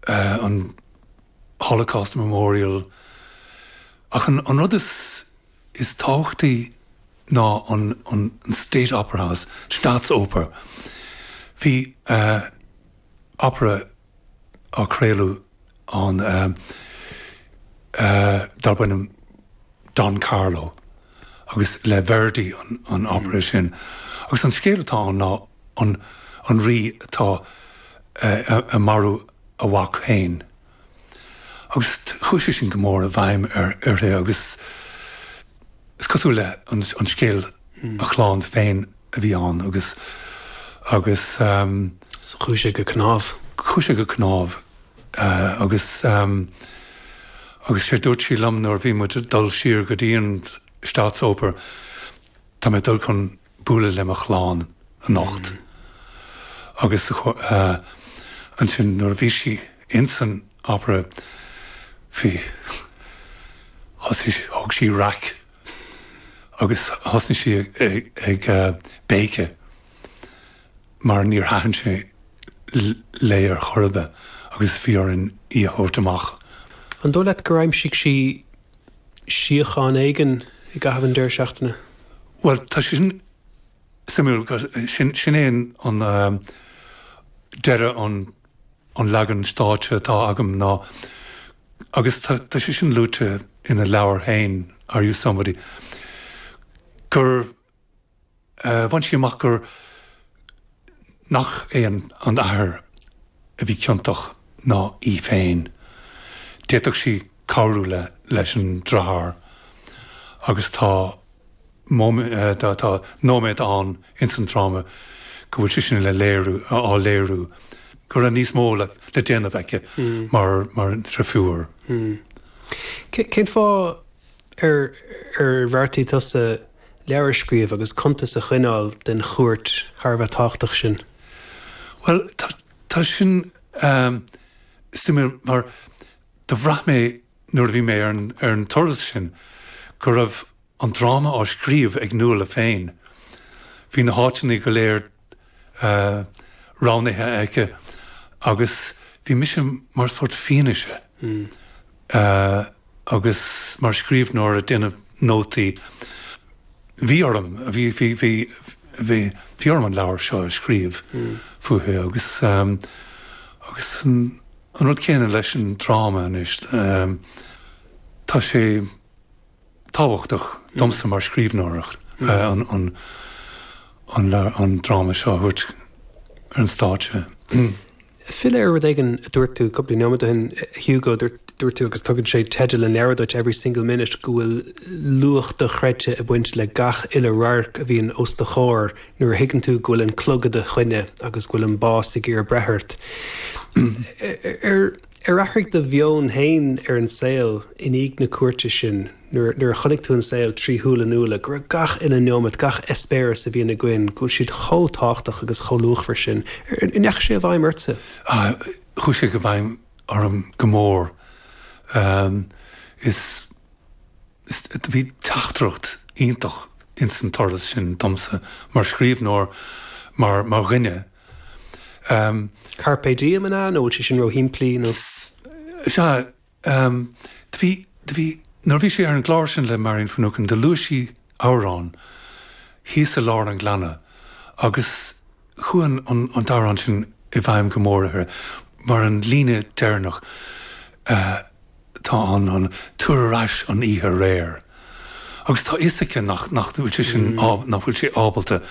an Holocaust Memorial ach an rud is tábhachtaí ná an State Opera House, Staatsoper. Bhí opera á craoladh ann darb ainm Don Carlo. agus le Verdi an opera sin. Agus an scéal atá ann ná an rí atá ag marú a mhac féin. Agus chuaigh sé sin go mór i bhfeidhm uirthi agus is cosúil le an scéal a chlann féin a bhí ann agus. Chuaigh sé go cnámh. Chuaigh sé go cnámh. Agus, agus sé dúirt sí liom nuair a bhí muid ag dul siar go dtí an Staatsoper, tá mé ag dul chun bualadh le mo chlann anocht. Agus ansin nuair a bhí sí in san Opera, bhí, thosaigh sí, thóg sí raic agus thosnaigh sí ag béiceadh. mar níor thaitin sé léi ar chor ar bith agus bhí orainn í a thabhairt amach. An dóigh leat gur aimsigh sí síocháin éigin i gcaitheamh an deireadh seachtaine? Bhuel, tá sé sin suimiúil, sin é an deireadh an leagan stáitse atá agam ná agus tá sé sin luaite ina leabhar féin, Are You Somebody? gur. Bhain sí amach gur, nach é an t-athair a bhí ciontach ná í féin. D'fhéadfadh sí cabhrú le, leis an driotháir agus tá nóiméad ann ins an dráma go bhfuil sé sin le léiriú, á léiriú, go raibh níos mó le déanamh aici mar, mar dhrifiúr. Cén fáth Ar bheartaigh tusa leabhar a scríobh agus cuntas a choinneáil den chuairt thar a bheith tábhachtach sin? Bhuel, tá sin suimiúil mar do bhraith mé nuair a bhí mé ar an turas sin go raibh an dráma á scríobh ag Nuala féin. Bhí na háiteanna go léir roghnaithe aici agus bhí mise mar sórt fianaise agus mar scríbhneoir ag déanamh nótaí. Bhí orm, bhí, bhí, bhí, bhí, bhí orm an leabhar seo a scríobh fúithi agus, agus an rud céanna leis an dráma anois, tá sé. tábhachtach domsa mar scríbhneoir an dráma seo a thabhairt ar an stáitse. Filleadh ar rud éigin a dúirt tú cúpla neomat ó shin, a Hugo, dúirt tú, agus tugann sé teideal an leabhair duit, Every Single Minute, go bhfuil luach dochreidte ag baint le gach uile radharc a bhíonn os do chomhair nuair a thuigeann tú go bhfuil an clog i do choinne agus go bhfuil an bás ag iarraidh breith ort. Ar athraigh do mheon féin ar an saol i ndiaidh na cuairte sin, nuair a chonaic tú an saol trí shúile Nuala, go raibh gach uile neomat, gach eispéireas a bhíonn againn, go bhfuil siad chomh tábhachtach agus chomh luachmhar sin? An ndeachaigh sé i bhfeidhm ortsa? Ah, chuaigh sé i bhfeidhm orm go mór. Is, is, bhí teachtaireacht iontach ins an turas sin domsa mar scríbhneoir, mar, mar dhuine. Carpe diem an ea? Nó an bhfuil sé sin róshimplí? Nó. Sea. Do bhí, do bhí, nuair a bhí sí ar an gclár sin le Marian Finucane, do luaigh sí amhrán thíos i lár an ghleanna agus chuaigh an, an t-amhrán sin i bhfeidhm go mór uirthi, mar an líne deireanach. tá an an tabhair ar ais an oíche aréir agus tá fhios aici nach nach bhfuil sé sin á nach bhfuil sé ábalta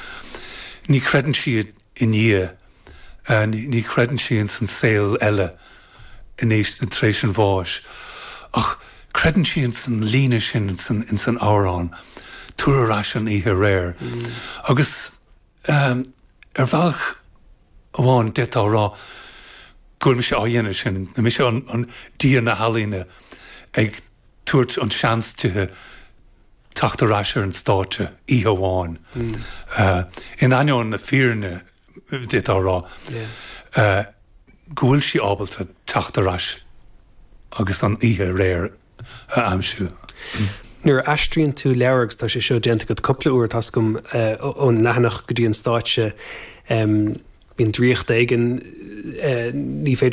ní chreideann sí i nDia ní chreideann sí ins an saol eile in éis na tar éis an bháis ach creideann sí ins an líne sin ins an ins an amhrán tabhair ar ais an oíche aréir agus. Ar bhealach amháin d'fhéadfá a rá go bhfuil mise á dhéanamh sin, mise an dia na healaíne ag tabhairt an seans dithe teacht ar ais ar an stáitse oíche amháin, in ainneoin na fírinne d'fhéadfá a rá go bhfuil sí ábalta teacht ar ais agus an oíche aréir a aimsiú. Nuair a aistríonn tú leabhar, agus tá sé seo déanta agat cúpla uair, tá 's agam, ón leathanach go dtí an stáitse, bíonn draíocht éigin, ní féidir